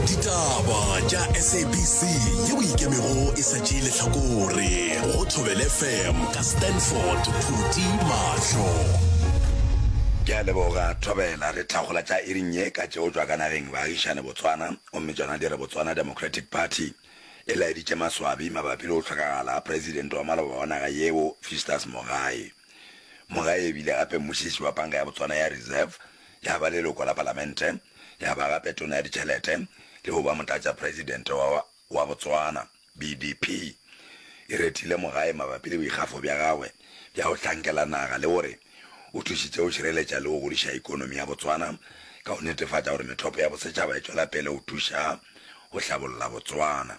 ditaba tša sabc ye o ikemego e sa tšee lehlakore go thobele fm ka stanford phuti mahlo ke a leboga thobela re tlhagola tša iring ye ka tšeo tšwa ka nageng baagišane botswana gomme tšona di re botswana democratic party e laeditše maswabi mabapi le go hlokagala ga presidente wa maloba wa naga yeo fistas mogae mogae ebile gape mmušiši wa panka ya botswana ya reserve ya ba leloko la palamente, ya ba gape tona ya ditšhelete le go ba motlatšapresidente wa wa Botswana. BDP e retile Mogae mabapi le boikgafo bja gagwe bja go hlankela naga le gore o thušitše go šireletša le go godiša ekonomi ya Botswana ka go netefatša gore methopo ya bosetšhaba e tšwela pele go thuša go hlabolla Botswana.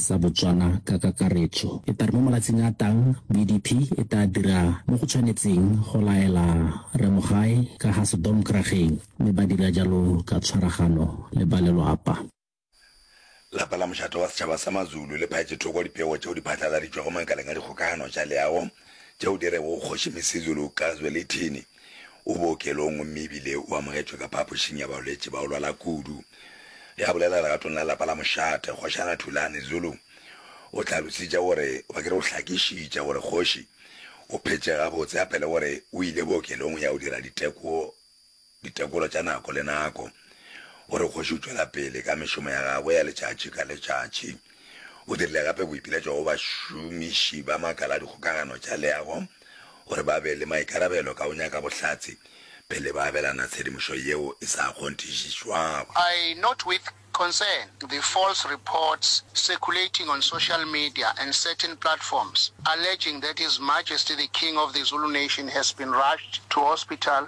sa Botswana ka kakaretšo. E tla re mo malatsing a tang, BDP e tla dira mo go tshwanetseng go laela Rre Mogae ka ga sedomkrageng, mme ba dira jalo ka tshwaragano le ba lelwapa. Lapa la Mošate wa Setšhaba sa Mazulu le phatše thoko dipego tšeo di phatlaladitšwego makaleng a dikgokagano tša leago tšeo di rego Kgoši Misizulu ka Zwelithini, O bookelong gomme e bile o amogetšwe ka phapošing ya balwetši ba go lwala kudu. Ge a bolela legatong la lapa la mošate, Kgošana Thulani Zulu o hlalositše gore ba ke re o hlakišitše gore kgoši o phetše gabotse a pele gore o ile bookelong go ya go dira diteko ditekolo tša nako le nako gore kgoši o tšwela pele ka mešomo ya gagwe ya letšatši ka letšatši. O dirile gape boipiletšo go bašomiši ba makala a dikgokagano tša leago gore ba be le maikarabelo ka go nyaka bohlatse pele ba abelana tshedimošo yeo e sa kgonthišišwago. I note with concern the false reports circulating on social media and certain platforms alleging that His Majesty the King of the Zulu Nation has been rushed to hospital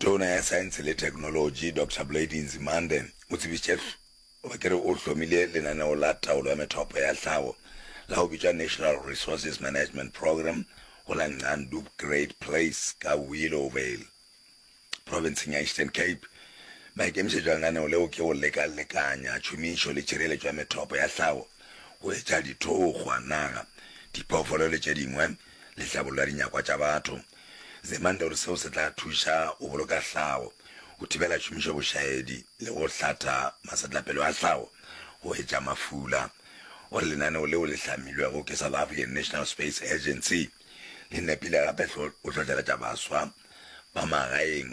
Tona ya Saense le Theknolotši, Doctor Blade Nzimande, o tsebišitše goba ke re o hlomile lenaneo la taolo ya methopo ya tlhago la go bitšwa National Resources Management Programme go la Ngqandub Great Place ka Willowvale, profenseng ya Eastern Cape. Maikemišetšo a lenaneo leo ke go leka-lekanya tšhomišo le tšhireletšo ya methopo ya tlhago go etša dithokgwa, naga, diphoofolo le tše dingwe le hlabollo ya dinyakwa tša batho. Zemande o re seo se tla thuša go boloka hlago, go thibela tšhomišo bošaedi le go hlatha masetlapelo a hlago go etša mafula. O re lenaneo leo le hlamilwego ke South African National Space Agency le nepile gape go hlohleletša baswa ba magaeng